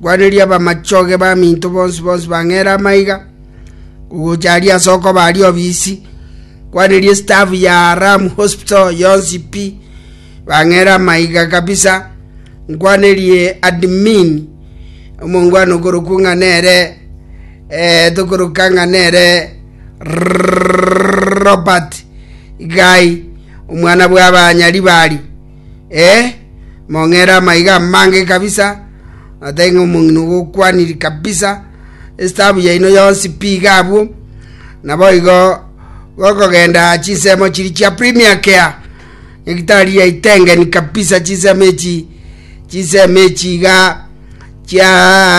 Gwaneria abamachoge baminto bonsi bonsi bang'ere amaiga, gogocha aria ase okoba aria obisi. Gwaneria staff ya Ram Hospital yonsi pi, bang'ere amaiga kabisa. Nkwanerie admin omongwana okorokwa ng'a nere eh, tokoroka ng'a nere Robert Gai, omwana bwa abanyaribari. Ee, mong'ere amaiga amange kabisa, otebe ng'a omong'ina ogokwaniri kabisa, Estaabu yaino yonsi pi iga abwo, naboigo gokogenda chinsemo chiria chia premier care, nyagitari yaitengeni kabisa chinsemo echi, chinsemo echi iga chia